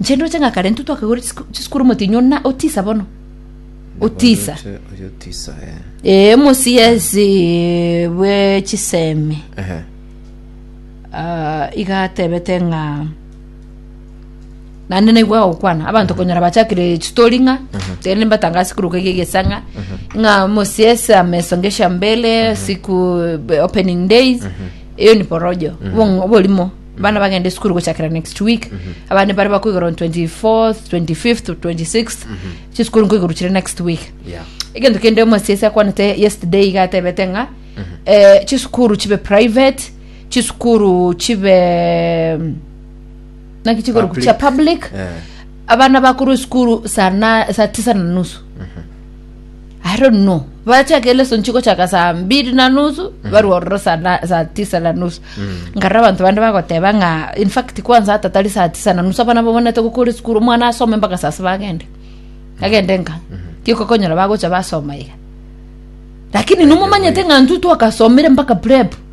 Inche ndoche ng'a kare intwe twakegorire chisku- chisukuru omotienyi ona otisa bono otisa Oyote- oyotisa eh. ee omosiesi bwe chisemi Ehe. Ah, iga atebete ng'a naende naigwa agokwana abanto konyora bachakire chitori ng'a tende mbatanga sikuru kege gesang'a ng'a mosiese amesongesha mbele siku be- opening days eyo ni porojo Obong- oborimo Abana bagende esukuru gochakera next week abande bare bakoigora on 24th 25th 26th chisukuru nkoiguru chire next week Yeah. egento kende omosiesi akwanete yesterday iga atebete ng'a eh, chisukuru chibe private chisukuru chibe mm, naki chigoro Public. chia public Eh. abana bakorwa esukuru saa na- saa tisa na nusu I don't know. Bachaka ile sonchi gochaka saa mbili na nusu barwa ororo saa na- saa tisa na nusu nkarora abanto bande bagoteba ng'a in fact kwanza hata tari saa tisa na nusu abana babonete gokora esukuru omwana asome mpaka saa saba agende agende nka tikokonyora bagocha basoma iga lakini nomomanyete ng'a ntwe twakasomire mpaka prep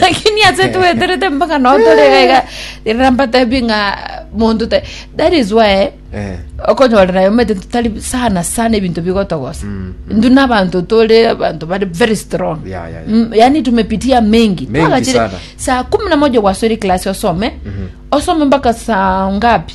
lakini ase tweterete mpaka nao tore iga iga rero mbatebie ng'a monto te that is why Eh. okonyorera ayo omanyete totari sana sana ebinto bigotogosa Mm, indu na abanto tore abanto bari very strong Ya, ya, ya. Mm, yaani tumepitia mengi Mengi Twagachire sana. saa kumi na moja gwasore class osome osome mpaka saa ngapi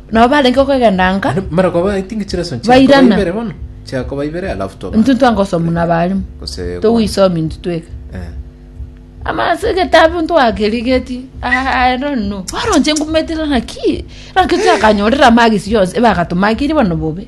Nabo barenge okogendanka, Naende mara koba I think chire sonsi Bairana. chiakoba ibere bono chiakoba ibere alafu toba intwe ntwangosomu na abalimu. Gose kwa- Togoisomi intwe tweka. Eh. Amase egetabu ntwakerigeti. I don't know. Boronche ngumetire naki. Naki twakanyorera magisi yonsi ebagatumakirie bono bobe.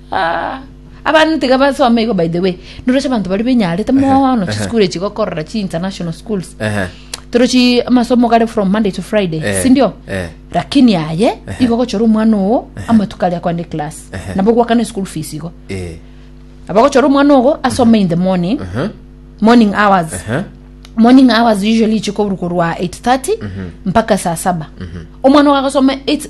Aa, abana tiga basome igo by the way noroche abanto bari benyarete mono Ehe. chisukuru echi gokorora chi international schools Ehe. torochi amasomo gare from monday to friday Eh, sindio eh. lakini aye igo gochora omwana ogo amatuko aria kwande class Ehe. nabo gwakana school fees igo Eh. abagochora omwana ogo asome in the morning Mhm. morning hours Ehe. morning hours usually ichikoburukorwa 830 mpaka saa saba omwana ogo agasoma 8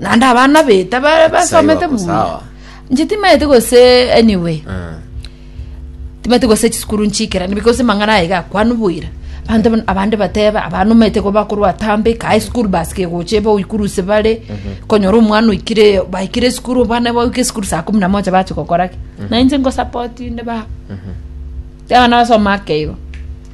naende abana beta ba- basomete wako buya sawa. nche timaete gose anyway Eh. timaete gose chisukuru nchikerani because mang'ana aye gakwanu bwira Abanto ban- abande bateba abana omanyete ko bakorwa atambe kae school bus kegocha ebe oikuruse bare konyora omwana oikire baikire esukuru abana baoika esukuru saa kumi na moja bachi gokora ki nainche ngosapotin'de baba abana basoma ake igo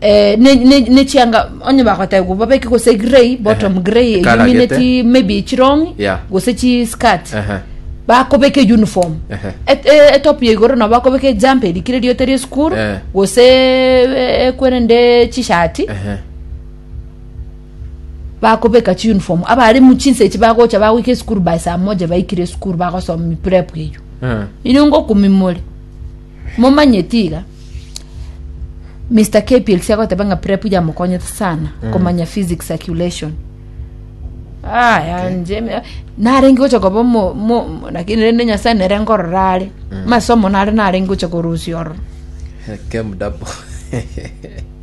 Eh, ne- ne- nechianga onye bagoteba gwa babeke gose grey bottom Ehe. grey Ekalagete. illuminate maybe echirongi Yeah. gose chi skirt Ehe. bakobeka uniform Ehe. Et- eh, etop ya igoro nabo bakobeka ejampa erikire riote ria esukuru Eh. gose eh, ekwerende chishati Ehe. bakobeka chi uniform abare muchinsa echi bagocha bagoika esukuru by saa moja baikire esukuru bagosoma miprep eyo Eh. inongo kumimore momanyeti iga Mister KPLC agoteba ng'a prep yamokonyete sana komanya physics circulation ah yanje me- narenge gocha koba omo- mo- mo- lakini rende nyasae nere nkorora are masomo nare narenge gocha korusia ororo Came double.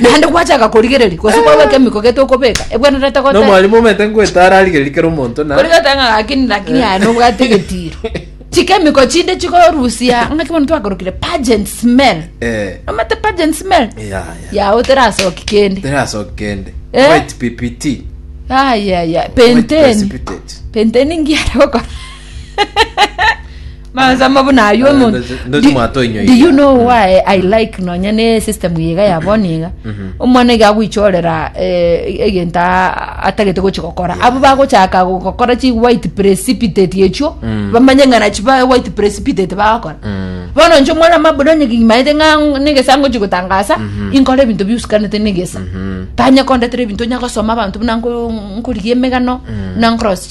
Naende gwachaka korigereria, gose kwagwa ekemiko gete okobeka, ebwenerete Na goteba. omwarimu omanyete ngoeta ararigererie kera omonto na Kori goteba ng'a lakini lakini aye nobwate egetiro. Chikemiko chinde chigorusia ng'aki bono twakorokire pungent smell. Eh, Omanyete pungent smell? ya, ya. Yao terasoki kende. Terasoki kende. Eh? White PPT. Ayaya, White penteni. precipitate. Penteni ngiare gokora. Mansa mabu naywo Eh, mo- ndoche- Do- ndoche mwato inyo do iga. you know Mm. why i like nonya ne system yiga ya boniga Mhm. omwana iga agwichorera eh, egento a- atagete gochi gokora abo bagochaka go- gokora chi white precipitate echio Mm. bamanye ng'ana chi ba white precipitate bagakora Mm. bono nche omwana mabuda onye kimaete ng'a negesango chi gotangasa Mhm. inkora ebinto biusikanete negesa Mhm. tanya kondetera ebinto nya gosoma abanto buna nko- nkorigia emegano Mm. na nkorosi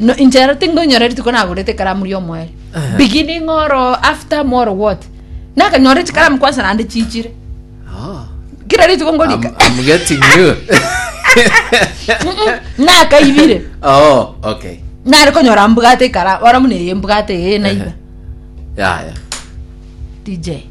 No, inche rero tingonyora rituko nagorete ekaramu ria omoerio Ehe. beginning oro after moro what nakanyora chikaramu kwansa nande chichire Ah, kira rituko I'm, ngorika I'm getting you. nakaibire oh, okay. nare konyora mbwate ekaramu ora muna eye mbwate eye naiba Yeah, yeah. dj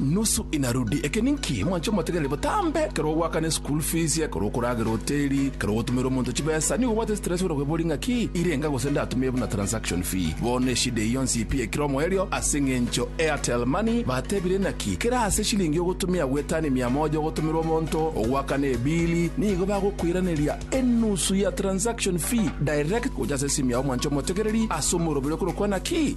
Nusu inarudi. Eke ninki? Mwanche omotegereri botambe. Ekero ogoakana eschool fees, ekero okoragera hoteli, ekero ogotumera omonto chibesa, nigo obwate stress ore okwebori ng'aki irenga gose ndatumie buna transaction fee. Bono eshida eye yonsi pi ekire omoerio ase ng'encho Airtel Money batebire naki kera ase shilingi ogotumia gwetani mia moja ogotumera omonto ogoakana ebili nigo bagokoiraneria enusu ya transaction fee direct gocha ase esimu yao mwanche omotegereri ase omoroberi okorokwa naki